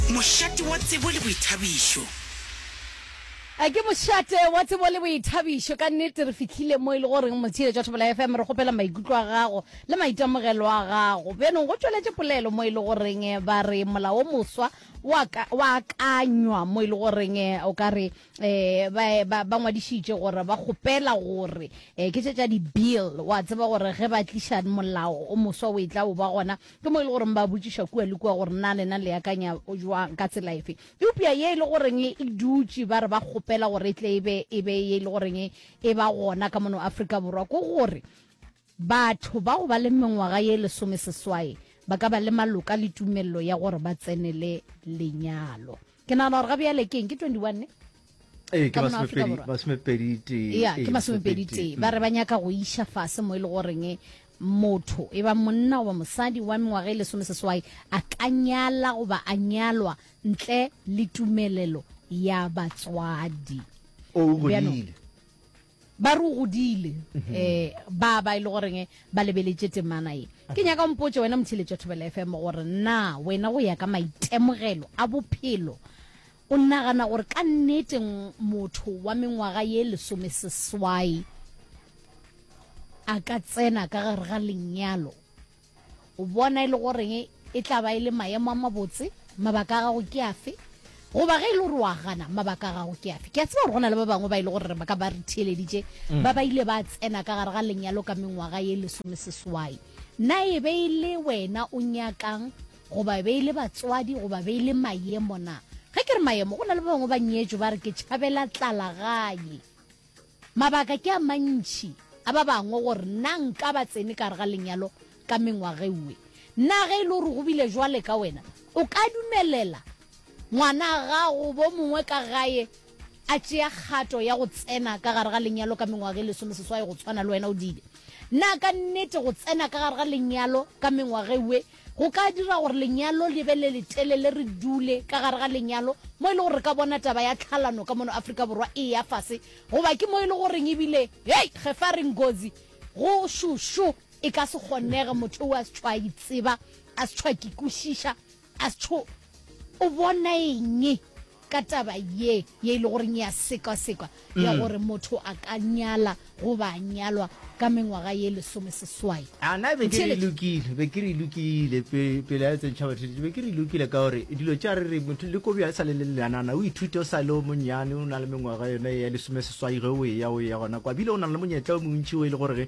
Mošate wa tsebo le boithabišo. A ke mošate wa tsebo le boithabišo. Ka nnete re fihlile mo e le goreng Motšheletši wa Thobela FM re kgopela maikutlo a gago le maitemogelo a gago. Bjano go tšweletše polelo mo e le goreng ba re mola wo moswa wa ka, wa akanywa mo e le goreng o ka re um ba, ba, ba ngwadišitše gore ba kgopela gore um ke tše tša di-bill. Wa tseba gore ge ba tliša molao o moswa o e tla o ba gona Ke mo e le goreng ba botšiša kua le kua gore na lena le akanya jwang ka tsela efe. Eupša ye e le goreng e dutše ba re ba kgopela gore e tle e be e be ye e le goreng e ba gona ka mono Afrika Borwa ke gore batho ba go ba le mengwaga ye lesomeseswai ba ka ba le maloka le tumelelo ya gore ba tsenele lenyalo. ke nagana gore ga bjale ke eng ke 21 ne ee ke masomepedi tee ba re ba nyaka go iša fase mo e le goreng e, motho e ba monna goba mosadi wa mengwaga e lesome seswai a ka nyala goba a nyalwa ntle le tumelelo ya batswadi o godile ba re o godile um ba ba e le goreng ba lebeletše temana ye ke nyaka mpotse wena motheletša thobela fm gore na wena go ya ka maitemogelo a bophelo o nagana gore ka nneteng motho wa mengwaga ye lesome seswai a ka tsena ka gare ga lenyalo O bona e le goreng e tla ba e le maemo a mabotse? Mabaka a gago ke afe? goba ge e le gore wa gana mabaka a gago ke afe ke a tseba gore go na le ba bangwe ba e le gore ba ka ba re theeleditše mm. ba ba ile ba tsena ka gare ga lenyalo ka mengwaga ye lesome seswai na e be e le wena o nyakang goba e be e le batswadi goba be e le maemo na ge ke re maemo go na le ba bangwe ba nyetso ba re ke tšhabela tlalagaye Mabaka ke a mantši a ba bangwe gore na nka ba tsene ka gare ga lenyalo ka mengwageue. Na ge e le gore go bile jwale ka wena, o ka dumelela ngwana a gago gobo mongwe ka gae a tšea kgato ya go tsena ka gare ga lenyalo ka mengwaga e lesomeseswai go tshwana le wena o dile? Na ka nnete go tsena ka gare ga lenyalo ka mengwageue Go ka dira gore lenyalo le be le letelele re dule ka gare ga lenyalo, mo e le gore re ka bona taba ya tlhalano ka mono Afrika Borwa e eya fase, goba ke mo e le goreng ebile, hei, ge fa re ngozi, go šošo, e ka se kgonege, motho o a se tšho a itseba, a se tšho a kikwišiša, a se tšho o bona eng. ka taba ye ye e le goreng ya sekwasekwa ya gore motho a ka nyala goba a nyalwa ka mengwaga ye lesome seswai a na be ke re Theeletšo. lokile be ke re lokile pe- pele a tsentšha batheledi be ke re lokile ka gore dilo tša re re motho le kobi a sa le le lenana o ithute o sa le o monnyane o na le mengwaga yone ya lesome seswai ge o eya o eya gona kwa bile o na le monyetla o montši o e le gore ge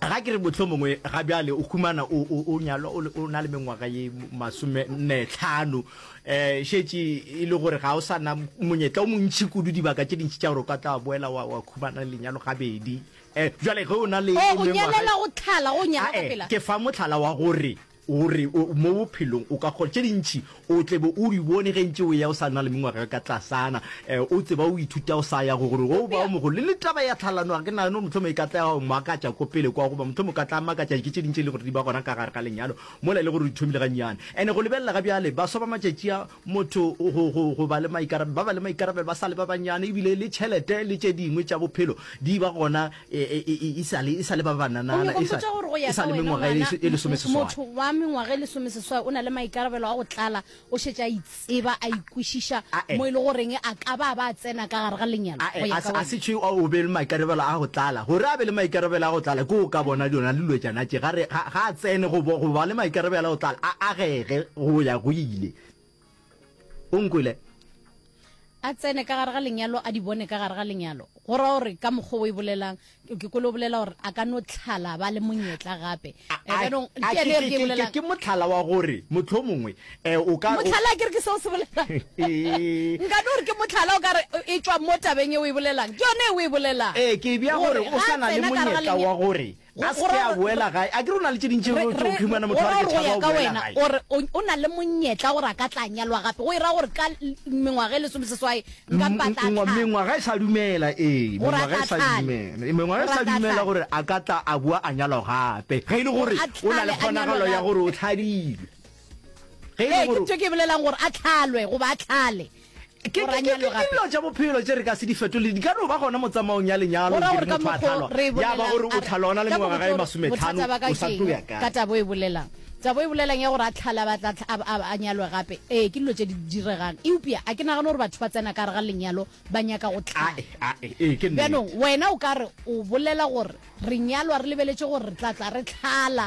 Ga ke re mohlomongwe ga bjale o humana o, o, o nyalwa o, o na le mengwaga ye masome nne tlhano, e šetše e le gore ga o sa na monyetla o montši kudu dibaka tše dintši tša gore o ka tla wa boela wa, wa humana lenyalo gabedi. E, bjale ge o na le Oh, go mengwaga, nyalela go tlala, go nyalwa ka ae, pela. ke fa mohlala wa gore O re mo bophelong o ka kgona tše dintši, o tle be o di bone ge ntše o ya o sa na le mengwaga e ka tlasana, o tseba o ithuta o sa ya go gore o ba o mogolo. Le taba ya tlhalano ga ke nagane gore mohlomong e ka tla ya makatša ko pele kwa, goba mohlomong o ka tla makatša ke tše dingwe tše e lego gore di ba gona ka gare ga lenyalo mola e le gore o di thomile gannyane. And-e go lebelela ga bjale, baswa ba matšatši a, motho go, go, go ba le maikarabelo, ba ba le maikarabelo ba sa le ba bannyane, ebile le tšhelete le tše dingwe tša bophelo di ba gona e, e, e, e sale e sale ba bananana e sale gore go ya ka wena motho wa mengwaga e lesomeseswai o na le maikarabelo a go tlala o šetše a itseba a ikwešiša mo e le goreng a ka ba ba tsena ka gare ga lenyalo a se tšhe o be le maikarabelo a go tlala gore a be le maikarabelo a go tlala ke o ka bona dona lilwetšana tše ga a tsene go ba le maikarabelo a go tlala a agege go ya go ile o nkwele a tsene ka gare ga lenyalo a di bone ka gare ga lenyalo go ra gore ka mokgwa o e bolelang ke kole o bolela gore a ka no tlhala ba le monyetla gape eh, ke motlhala wa gore motlho mongwe eh, o ka motlhala ke re ke seo se bolelang nka no gore ke motlhala o kare e tswa mo tabeng e o e bolelang ke yone e o e bolelang ee ke bja gore o sana le monyetla wa gore Go- A se go ke ra- a boela gae. A ke re o na le tše dintši Re- tšeo re- humana motho go a ra re ke gore go tšhaba ya o ka boela wena gae. or o o na le monyetla gore a ka tla nyalwa gape go e ra gore ka l- mengwaga e lesome seswai nka mpa tla Mengwa- tlhana. mengwaga e sa dumela ee Gore a mengwaga e tla sa tlhale. dumela Ee, mengwaga e Gore a sa tla dumela tlhale. gore a ka tla a boa a nyalwa gape ge e le gore Gore a o na le tlhale a kgonagalo nyalwe ya gape. gore o tlhadile ge e Ee, le ke gore tšo ke e bolelang gore a tlhalwe goba a tlhale Ke Go ra ke- ke- nyalo ke gape. dilo tša bophelo tše re ka se di fetole di ka no ba gona motsamaong ya lenyalo Go ra gore ka motho a mokgo tlhalwa re e ya ba gore bolelang, o a re, tlhalwa o na le ka mengwaga e mokgwa- masometlhano bothata ba ka o sa ke tlo eng? ya kae ka tabo e bolelang tabo e bolelang ya gore a tlhala ba tla tla- a- a- a nyalwe gape ee ke dilo tše di diregang eupša a ke nagane gore batho ba tsena ka re ga lenyalo ba nyaka go tlhala Ae, ae, ee, ke nnete. bjanong wena o ka re o bolela gore re nyalwa re lebeletše gore re tla tla re tlhala